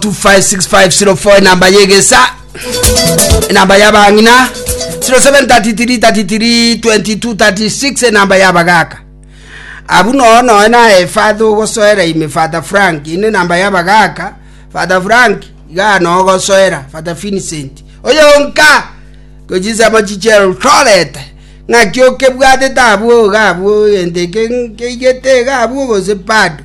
256504 enamba yegesa enamba yabang'ina 0733332236 enamba yabagaka abu noyo noyo naye father ogosoera ime father frank ine enamba yabagaka father frank iga noyo ogosoera father vincent oyonka gochisemo chichero torete ng'aki okebwatete abwo iga abwo egento eke nkeigete iga abwo gose bado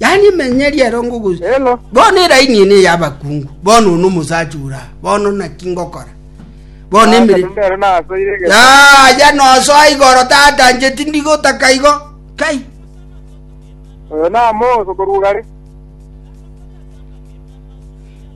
yaani emenyeri erongo gose Hello. bono eraini ene y'abakungu bono one omosacha ora bono naki ngokora bono emere Mbere nasoire gete. yaya nosoa igoro tata nche tindigotaka igo kai Oyo namoso korugare.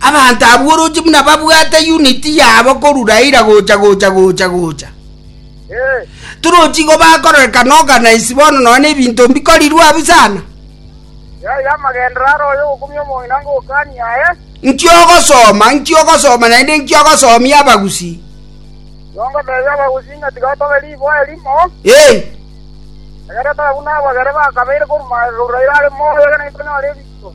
Abanto abwo oroche buna babwate uniti yabo korwa Raila gocha gocha gocha gocha. Torochi igo bakororekana organize bono nonya na ebinto mbikorirwe abwo sana. Nki ogosoma, nki ogosoma naende nki ogosomia abagusi? Eh, Egere tore buna abwo egere bakabeire korwa Raila are moyo, egere naintwe tonyore ebinto.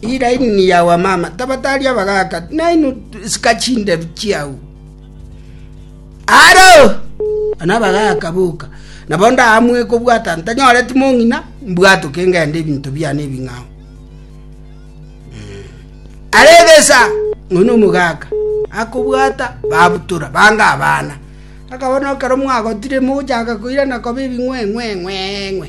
Iraini yao amama, tabata aria abagaaka, nainwe sika chinderu chiao. Aro! Ana abagaaka boka, nabo ndaamue kobwata ntanyore timong'ina, mbwatoke ngende ebinto biane ebing'ao. Arebesa, ng'ono omogaka, akobwata, babutora, banga abana. Akabona okero mwagotire mogochaka koirana koba ebing'weng'weng'weng'we.